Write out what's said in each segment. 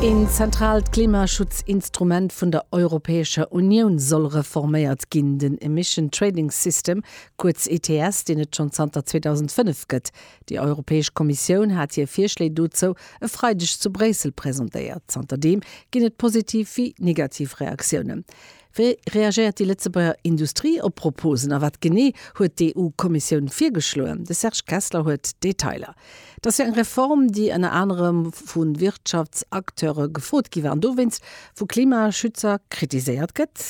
Een zentraalt Klimaschutzinstrument vun der Europäescher Unioun soll reforméiert ginn, den Emission Trading System, kuerz ETS, deen et schonn zanter 2005 gëtt. Déi Europäesch Kommissioun hat hir Virschléi dozou e Freideg zu Bréissel presentéiert. Zanterdeem ginn et positiv wéi negativ Reaktiounen. Wéi reagéiert déi Lëtzebuerger Industrie op d'Proposen a wat genee huet d'EU-Kommissioun virgeschloen? De Serge Kessler huet d'Detailer. Et ass jo eng Reform, déi ënner anerem vu Wirtschaftsacteure gefrot gi war an dowéinst vu Klimaschützer kritiséiert gëtt.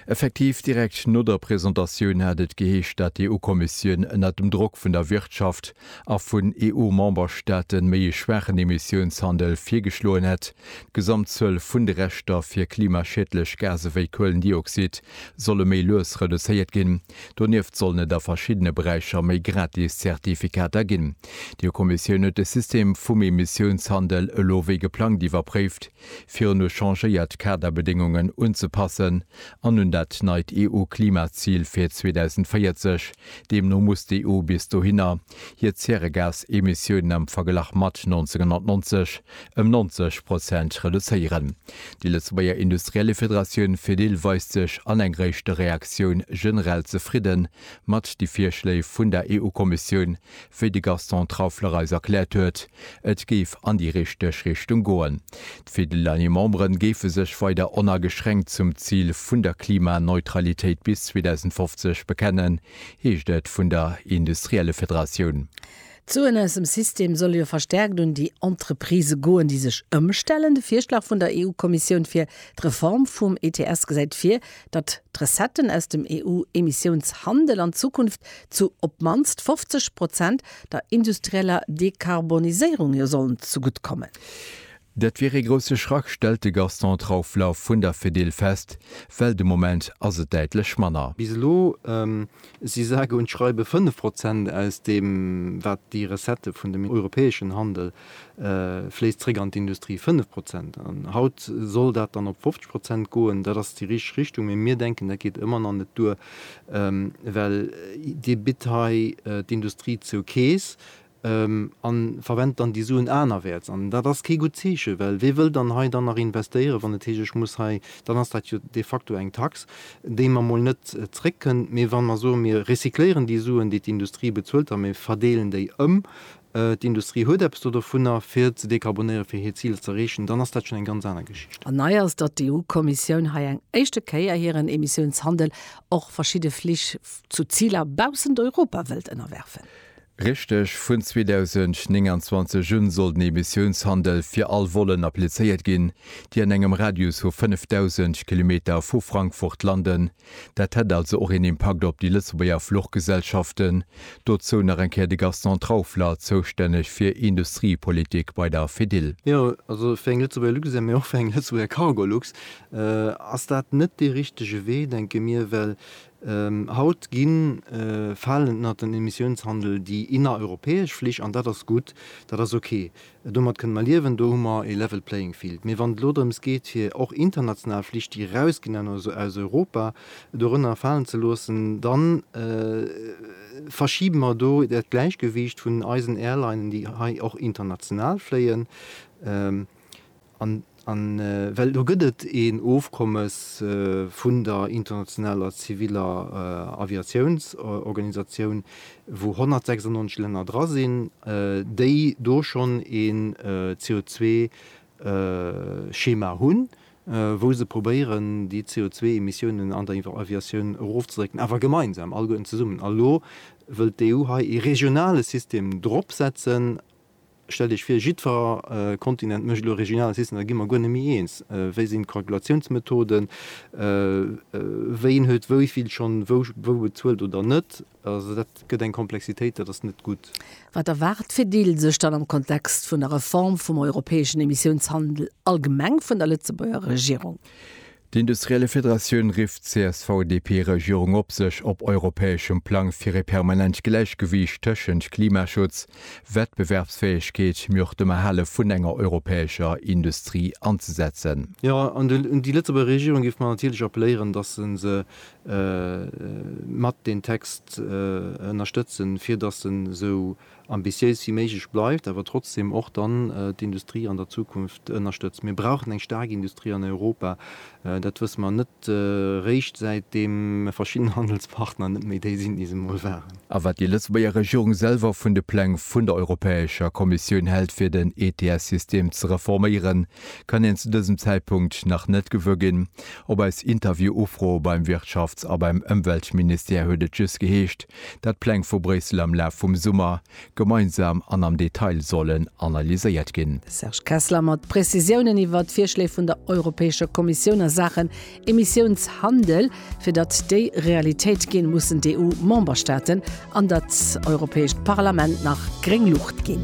Effektiv, direkt no der Presentatioun hat et geheescht, dat d'EU-Kommissioun ënner dem Drock vun der Wirtschaft a vun EU-Memberstaaten méi e schwaachen Emissiounshandel virgeschloen hätt. D'Gesamtzuel vun de Rechter fir klimaschiedlech Gase wéi Kuelendioxid solle méi lues reduzéiert ginn. Donieft sollen et a verschiddene Beräicher méi gratis Zertifikater ginn. D'EU-Kommissioun huet de System vum Emissiounshandel elo wéi geplangt iwwerpréift, fir un u changéiert Kaderbedéngungen unzepassen an un dat neit EU-Klimazil fir 2040, Deemno muss d'EU bis dohinner hir Zäregasemissiounen am Verglach mat 1990 ëm 90 Prozent reduzéieren. Déi Lëtzebuerger Industriellefederatioun Fedil weist sech an eng réischte Reaktioun generell zefridde mat de Virschléi vun der EU-Kommissioun. Wéi de Gaston Traufler eis erkläert huet, et géif an déi richteg Richtung goen. D'Fidel an hir Memberen géife sech weider onageschränkt zum Zil vun der Klimaneutralitéit bis 2050 bekennen, heescht et vun der Industriellefederatioun. D'Suen aus dem System solle jo verstärkt un déi Entreprisë goen, déi sech ëmstellen. De Virschlag vun der EU-Kommissioun fir d'Reform vum ETS gesäit vir, datt d'Recetten aus dem EU-Emissiounshandel an Zukunft zu op d'mannst 50 Prozent der industrieller Dekarboniséierung jo sollen zegutt kommen. Dat wier ee grousse Schrack, stellt de Gaston Traufler vun der Fedil fest, well de Moment ass et däitlech manner. Bis elo si sage und schreibe 5 Prozent aus deem, wat déi Recettë vun dem europäeschen Handel fléisst, zréck an d'Industrie. 5 Prozent! An haut soll dat dann op 50 Prozent goen. Dat ass déi richteg Richtung, mee mir denken, dat geet ëmmer nach net duer, well Dir bitt hei d'Industrie zou Keess. a verwent dann déi Suen anerwäerts. An dat ass kee gutt Zeechen, well wie wëll dann hei dann nach investéieren, wann et heescht, ech muss hei, dann ass dat jo de facto eng Tax, déi mer emol net zréckkënnt. Mee wa mer soen, mir recycléieren déi Suen, déi d'Industrie bezuelt a mir verdeelen déi ëm, d'Industrie huet eppes do dovunner, fir ze dekarbonéieren, fir hir Ziler z'erreechen, dann ass dat schonn eng ganz aner Geschicht. An nei ass, datt d'EU-Kommissioun hei eng éischte Kéier hiren Emissiounshandel och verschidde Flich zu Ziler baussent Europa wëllt ënnerwerfen. Richteg, vun 2029 un soll den Emissiounshandel fir all Vollen applizéiert ginn, déi an engem Radius vu 5.000 Kilometer vu Frankfurt landen. Dat hätt also och een Impakt op déi Lëtzebuerger Fluchgesellschaften. Dozou nach eng Kéier de Gaston Traufler, zoustänneg fir Industriepolitik bei der Fedil. Jo, also fir eng Lëtzebuerger Luxair, mee och fir eng Lëtzebuerger Cargolux ass dat net dee richtege Wee, denke mir, well Haut ginn falen ënnert den Emissiounshandel déi innereuropäesch Flich, an dat ass gutt, dat ass ok, domat kënne mer liewen, do hu mer e level playing field. Mee wann et elo drëms geet fir och international Flich déi erausginn aus Europa dorënner falen ze loossen, da verschibe mer do dat Gläichgewiicht vun eisen Airlinen déi hei och international fléien. An well do gëtt et een Ofkommes vun der internationaler ziviller Aviatiounsorganisatioun, wou 196 Länner dra sinn, déi do schonn een CO2-Schema hunn, wou se probéieren, déi CO2-Emissiounen an der Aviatioun erofzedrécken, awer gemeinsam, alleguerten zesummen. A lo wëllt d'EU hei ee regionale System dropsetzen. Stellt Iech vir, jiddfer Kontinent mécht elo e regionale System, da gi mer guer net méi eens. Wéi sinn d'Kalkulatiounsmethoden? Ween huet wéi vill schonn wou bezuelt oder net? Also dat gëtt eng Komplexitéit, dat ass net gutt. Wat erwaart d'Fedil sech dann am Kontext vun der Reform vum europäeschen Emissiounshandel allgemeng vun der Lëtzebuerger Regierung? D'Industriellefederatioun rifft d'CSV-DP-Regierung op, sech op europäeschem Plang fir e permanent Gläichgewiicht tëschent Klimaschutz, Wettbewerbsfäegkeet, mee och dem Erhale vun enger europäescher Industrie anzesetzen. Jo, an un déi Lëtzebuerger Regierung géife mer natierlech appelléieren, dass se se mat deen Text ënnerstëtzen, fir dass en esou Ambitiéis wéi méiglech bleift, awer trotzdem och dann d'Industrie an der Zukunft ënnerstëtzt. Mir brauchen eng staark Industrie an Europa. Dat wësse mer net réischt säitdeem verschidden Handelspartner net méi déi sinn, déi se emol waren. A wat déi Lëtzebuerger Regierung selwer vun de Pläng vun der Europäescher Kommissioun hält fir den ETS-System ze reforméieren, kann een zu dësem Zäitpunkt nach net gewuer ginn. Op eis Interview-Ufro beim Wirtschafts a beim Ëmweltministère huet et just geheescht, dat d'Pläng vu Bréissel am Laf vum Summer gemeinsam an am Detail sollen analyséiert ginn. Serge Kessler mat Prezisiounen iwwert d'Virschléi vun der Europäescher Kommissioun a Saachen Emissiounshandel, fir datt déi Realitéit ginn, mussen d'EU-Memberstaaten an dat Europäescht Parlament nach gréng Luucht ginn.